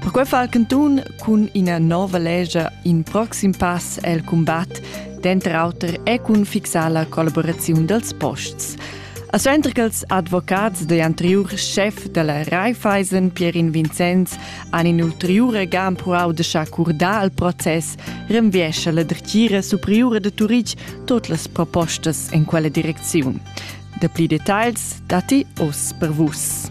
Perquei fa il cantun cun ina nova legia in proxim pass el combat, denter auter e cun fixar la collaboraziun dels posts. A suenter che ils advocats dei anteriur chef della Raiffeisen, Pierin Vincenz, han in ulteriur ga empruau de s'accordar al process, renviesce la dretgira superiura de Turitg tot las propostas en quella direcziun. Dapli detagls datti oz per Vus.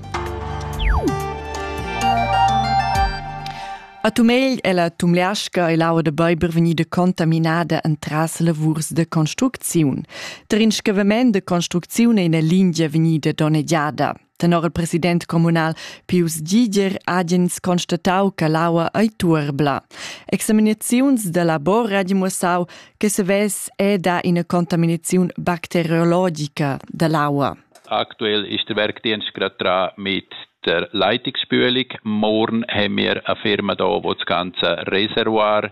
A Tumegl è la Tumleasca e l'aua da Beiber vegnida contaminada entras lavurs de construcziun. Der Inschavament de construcziun è ina lingia vegnida donnegiada. Tenor il president communal Pius Giger agens constatau che l'aua ei tuerbla. Examinaziuns da labor ha dimossau che se vess eda ina contaminaziun bacteriologica dall'aua. Aktuell ist der Werkdienst gerade dran mit der Leitungsspülung. Morgen haben wir eine Firma da, die das ganze Reservoir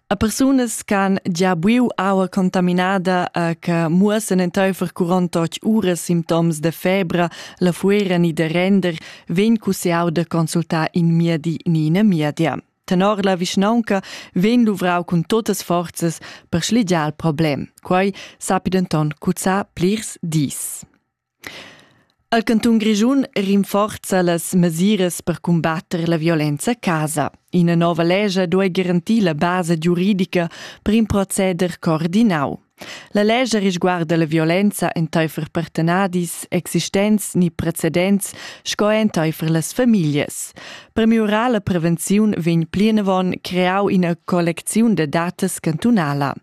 a persunas ch'han gia buiu aua contaminada e che muossen enteifer 48 uras simptoms da febra, la fuera ni da render, vegn cussiau da consultar in miedi ni ina miedia. Tenor la vischnaunca vegn luvrau cun totas forzas per schligiar il problem. Quei sapi denton cuzzar plirs dis. El cantun Grischun rinforza las mesiras per cumbatter la violenza a casa. Ina nova lescha duai garantir la basa giuridica per in proceder coordinau. La lescha risguarda la violenza enteifer partenadis, existents ni precedents sco enteifer las famiglias. Per miurar la prevenziun vegn plinavon creau ina collecziun da datas cantunala.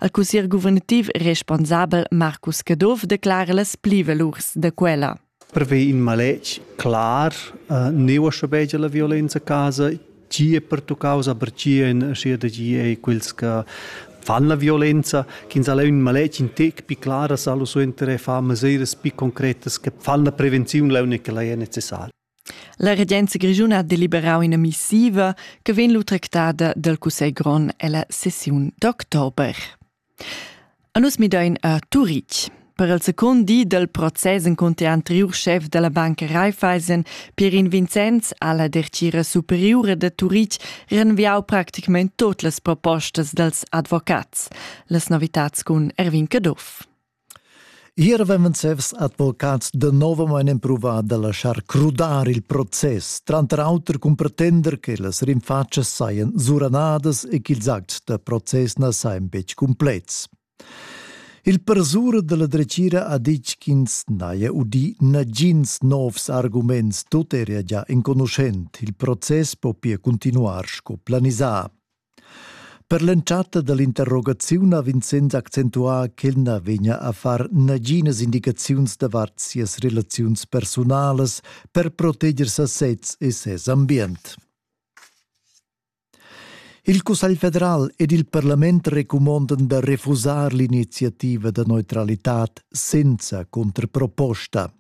Il cussier guvernativ responsabel Marcus Caduff declara las plivalurs da quella. Prevei in maletg clar, uh, neu schabegia la violenza a casa, chi è pertuccau, aber chi en sia de gi ei quels che fan la violenza, che ins ha un maletg in tec più claras allo suenter e fa mesures più concretas che fanno la prevenzione la unica che la è necessaria. La regenza grischuna ha deliberau ina missiva che vegn lu tractada dal cussegl grond ella sessiun d'october. A nus midein a Turitg. Per il secund di dal process encunter anteriur chef della banca Raiffeisen, Pierin Vincenz, ha la dertgira superiura de Turitg renviau practicament tot las propostas dels advocats. Las novitats cun Erwin Caduff. Ier avevan ses advocats danovamein empruvà da laschar crudar il process, tranter auter cun pretender che las rinfatschas sajan suranadas e ch'ils acts da process na sajan betg cumplets. Il persura da la dretgira ha ditg ch'ins n'haja udì nagins novs arguments, tut era gia enconuschent, il process po pia cuntinuar sco planisà. Per l'entschatta dall'interrogaziun ha Vincenz accentuà ch'el na vegnia a far naginas indicaziuns davart sias relaziuns personalas per proteger sasez e ses ambient. Il Cussegl federal ed il parlament recumondan da refusar l'iniziativa da neutralitad senza contraproposta.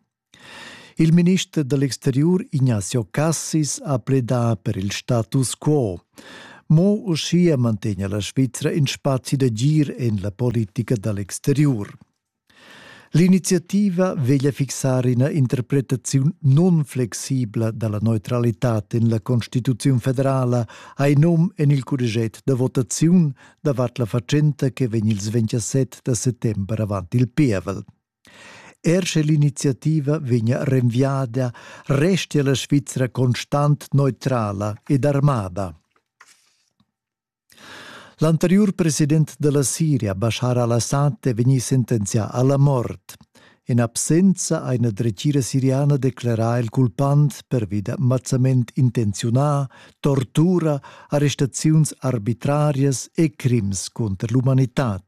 Il minister da l'exteriur Ignacio Cassis ha pledà per il status quo. Mo uschia mantegna la Svizra in spazi d'agir en la politica da l'exteriur. L'iniziativa veglia fixar ina interpretaziun non-flexibla dalla neutralità en la Constituziun federala hai num en il curriget da votaziun davart la fatschenta che vegn il 27 da settember avant il pievel. Er sche l'iniziativa vegnia renviada, restia la Svizra constant neutrala ed armada. L'anteriur president della Siria, Bashar al-Assad, è vegnì sentenzià alla mort. In absenza a una dretgira siriana declara il culpant pervi da mazzament intenziunà, tortura, arrestaziuns arbitrarias e crims contro l'umanità.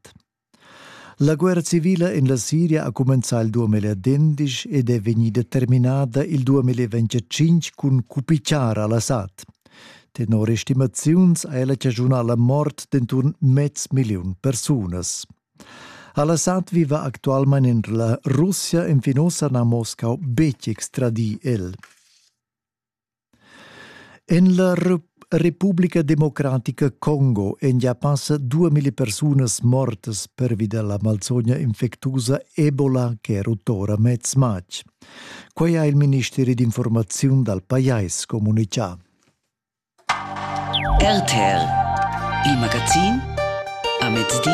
La guerra civila en la Siria ha cumenzà il 2011 ed è vegnida terminada il 2025 cun cupichar al-Assad. Tenor estimaziuns ha ella chaschunà la mort d'enturn mez milliun persunas. Al-Assad viva actualmain en la Russia e fin ossa n'ha Moscau betg extradì el. En la Republica Democratica Congo èn gia passa duemila persunas mortas pervi da la malsogna infectusa Ebola che è rutta ora mez matg. Quai ha il ministeri d'informaziun dal pajais communitgà. RTL, il magazin a mezdi.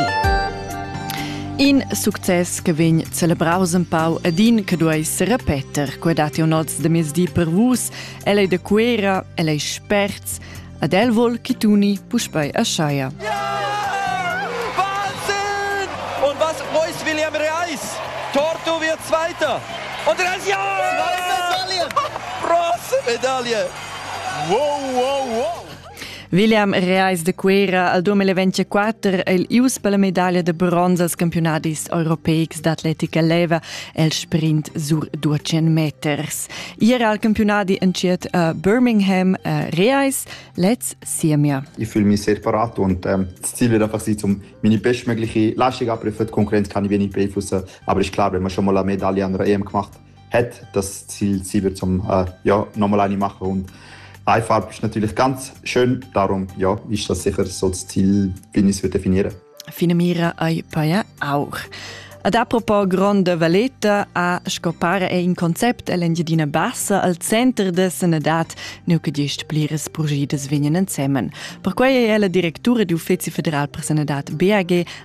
In success che vegn celebraus empau ed in che duei serepeter quei dati un oz de mezdi per vus, el ei de Cuera, el ei sperts, ad el vol chi tuni puspei a Schaia. Ja! Wahnsinn! Und was Reus William Reis? Torto wird Zweiter. Und Reis, ja! Zweite Medaille! Bronzemedaille! Wow, wow, wow! William Reis de Cuera al 2024 è il ius per la medaglia de bronze als campionadis europeics d'atletica leva el sprint sur 200 meters. Era al campionadi entschiet a Birmingham a Reis lez Siemia. Ich fühle mich sehr parat und ähm, das Ziel wird einfach sein, um meine bestmögliche Leistung abrufen. Die Konkurrenz kann ich wenig beeinflussen, aber ist klar, wenn man schon mal eine Medaille an der EM gemacht hat, hat, das Ziel, sie wird zum äh, ja, nochmal eine machen. Und eine Farbe ist natürlich ganz schön, darum ja, ist das sicher so das Ziel, wie ich es definieren Fine mira ai paia auch. Ad apropos gronda valeta a scopare è in concept all'Engiadina Bassa al center de sanadad nu che gest pliras progidas vegnan ensemen. Perquai è la direttura d'uffizi federal per sanadad BAG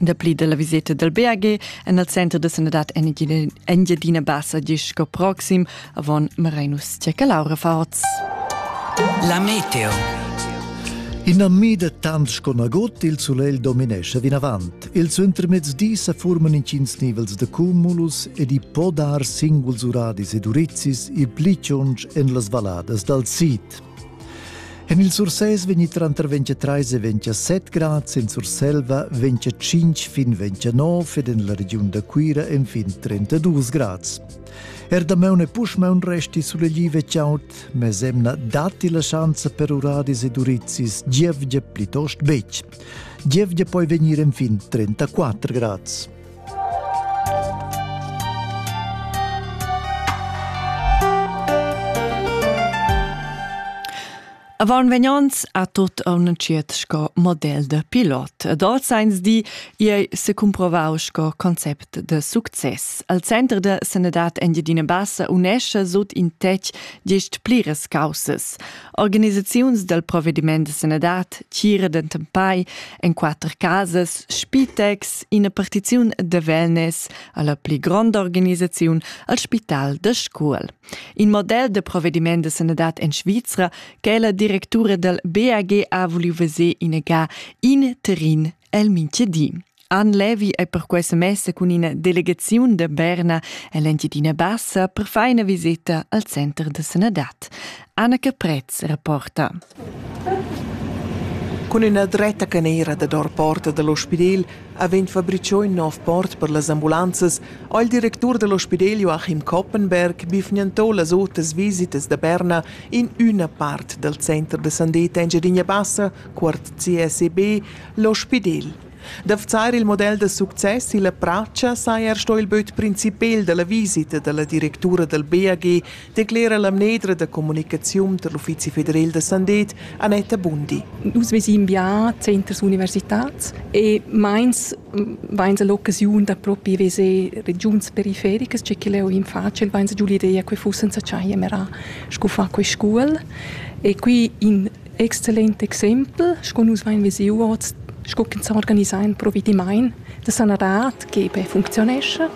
Dapli dalla viseta dal BAG en il center da sanadad Engiadina Bassa gis sco proxim avon Marinus Tiacalaura Forz. La meteo. Ina mida tant sco nagut il sulegl dominesce vinavant. Il suentermezdi sa forman intgins nivels da cumulus ed i può dar singuls uradis ed urizis il pli tschunch en las valladas dal sid. En il Sursès vegni tranter 23 e 27 grads, en Surselva 25 fin 29 ed en la regiun da Cuira enfin 32 grads. Er damaun e puschmaun resti sulegliv e chaud, mesemna datti la schanza per uradis ed urizis gievgia plitost betg. Gievgia poi vegnir enfin 34 grads. Avant vegnants a tot on entschiet sco model de pilot. Ed als eins di, ei se cumprovau sco concept de success. Al center de sanedad Engiadina Bassa unesce sut in tec diesch pliras causas. Organisaziuns dal provediment da sanadad tgira dentempai en quatter casas Spitex, ina partiziun da wellness alla pli gronda organisaziun al Spital da Scuol. In model da provediment da sanadad en Svizra che la directura dal BAG ha voliu veser inaga in terrin El mintgedi. Ann Levi è perquai se messa cun ina delegaziun da Berna ell'Engiadina Bassa per fare una visita al center de sanadad. Anna Caprez rapporta. Cun üna dretta canera da dor porta dall'ospidel avent fabriciò in nov port per las ambulanzas ho il directur dell'ospidel Joachim Koppenberg bifgnantò las otras visitas da Berna in üna part dal center de Sandeta Engiadina Bassa cuort CSEB, l'ospidel. D'afzar il model da success illa pracha saja er sto il böt principel da la visita da la directura dal BAG, declera la mnedra da comunicaziun tar l'Uffizi federal da sandet Annetta Bundi. Nus vesin bien centers universitats e meins vains l'occasiun da propi veser regiuns perifericas, c'è che leo in facil, vains giù l'idea che fussen sa chaia mera scu fa quei scuol. E qui in Excellent exempel, sco nus vein vesiu oz, sco ch'ins sa organisar in provedimaint da sanadad che per funcziunescha.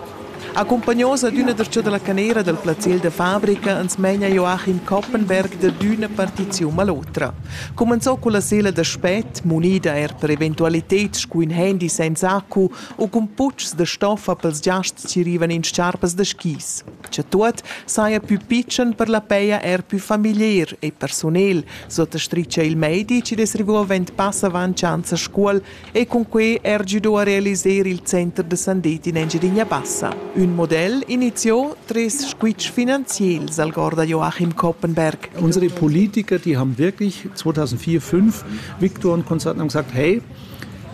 Accompagnaus ad üna dertscha dalla canera dal plaziel da fabrica ans meina Joachim Koppenberg da d'üna partiziun all'otra. Comenzò con la sela da spet, munida er per eventualiteds scu ün handy senza accu u cun putschs da stoffa pels giasts chi rivan in sciarpas da skis. che tuot saja pü pitschen per la peia er pü familier e persunel, sottastricha il meidi chi dess rivo vent pass avant schanza Scuol e cun quei er giudò a realiser il center de Sandetti in Engidinia Bassa. Ün model iniziò tres squitsch finanziels al Gorda Joachim Koppenberg. Unsere Politiker, die haben wirklich 2004-5 Viktor und Konzerten haben gesagt, hey,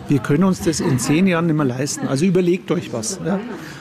wir können uns das in zehn Jahren nicht mehr leisten. Also überlegt euch was. Ja?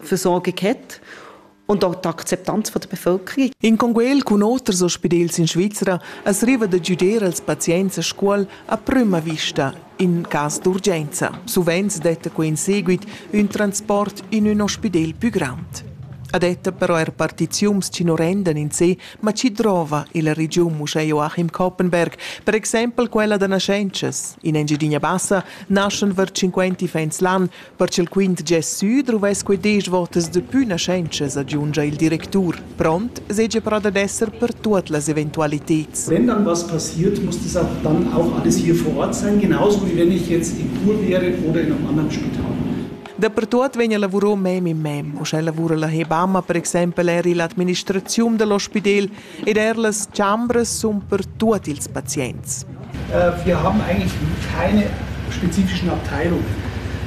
für sorgen hat und auch die Akzeptanz von der Bevölkerung. In conguel cun oters ospidels in Svizra es riva da giuder als pazients a scuol a prüma vista in cas d'urgenza. Suvent detta quo in seguit un transport in un ospidel più grand. Adetta però er partiziums ci non rendan in sé, ma ci drova il region uschè Joachim Koppenberg, per exempel quella da nascences. In Engidinia Bassa naschen var 50 fans l'an, Per ch'il quint gest sü druvess quei desch votas de pü naschentschas, agiungia il directur, pront seigi però dad esser per tuot las eventualiteds. Wenn, dann was passiert, muss das auch dann auch alles hier vor Ort sein, genauso wie wenn ich jetzt in Chur wäre oder in einem anderen Spital. Dapertuot vegn a lavurò mem in mem. Uschè lavura la Hebamma per exempel er illa administraziun dall'ospidel ed er las chambras sun per tuot ils pazients. Wir haben eigentlich keine spezifischen Abteilungen.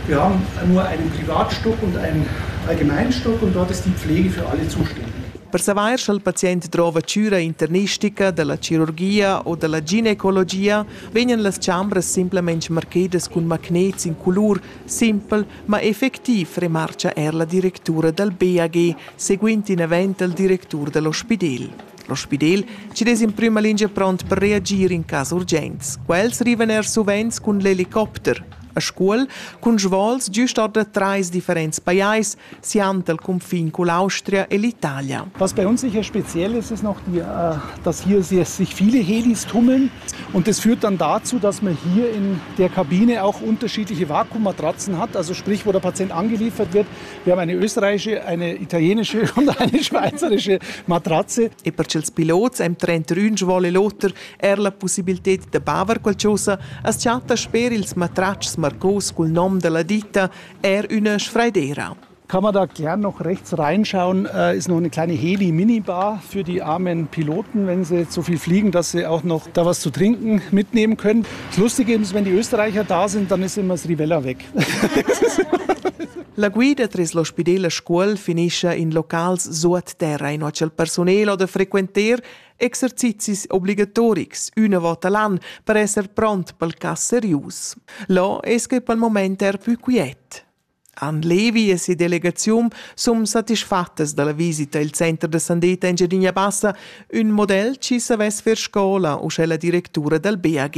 Wir haben nur einen Privatstock und einen Allgemeinstock und dort ist die Pflege für alle zuständig. Per savair sch'el pazient drova cüra internistica dalla chirurgia o dalla ginecologia vegnan las chambras simplamain marchedas cun magnets in colur simpel Ma effectiv remarcha er la directura dal BAG, seguind in event al directur da l'ospidel. L'ospidel chi'd es in prüma lingia pront per reagir in cas urgents. Quels rivan er suvent cun l'helicopter. A Scuol, cun svols giust or da trais differents pajais, siand al cunfin cun l'Austria e l'Italia. Was bei uns sicher speziell ist, ist noch, die, äh, dass hier sich viele Helis tummeln. Und das führt dann dazu, dass man hier in der Kabine auch unterschiedliche Vakuummatratzen hat. Also sprich, wo der Patient angeliefert wird. Wir haben eine österreichische, eine italienische und eine schweizerische Matratze. E per ils pilots am trenta Rünsch vuole l'oter er la possibilità da baver qualcosa, as chatta sper ils matratschs marcos cul nom della ditta er üna sfraidera. Kann man da gern noch rechts reinschauen, äh, ist noch eine kleine Heli-Minibar für die armen Piloten, wenn sie zu viel fliegen, dass sie auch noch da was zu trinken mitnehmen können. Das Lustige ist, wenn die Österreicher da sind, dann ist immer das Rivella weg. La guida tras l'ospidel a Scuol finisce in locals sut terra in il personale da frequentar exercizis obligatorics una volta l'anno per essere pronti per il cas serius. Là es che per il moment er più quiet. Han Levi e sia delegaziun sun satisfattas dalla visita i'l center da sandeta Engiadina Bassa, ün model chi savess fer scola uschè la directura dal BAG.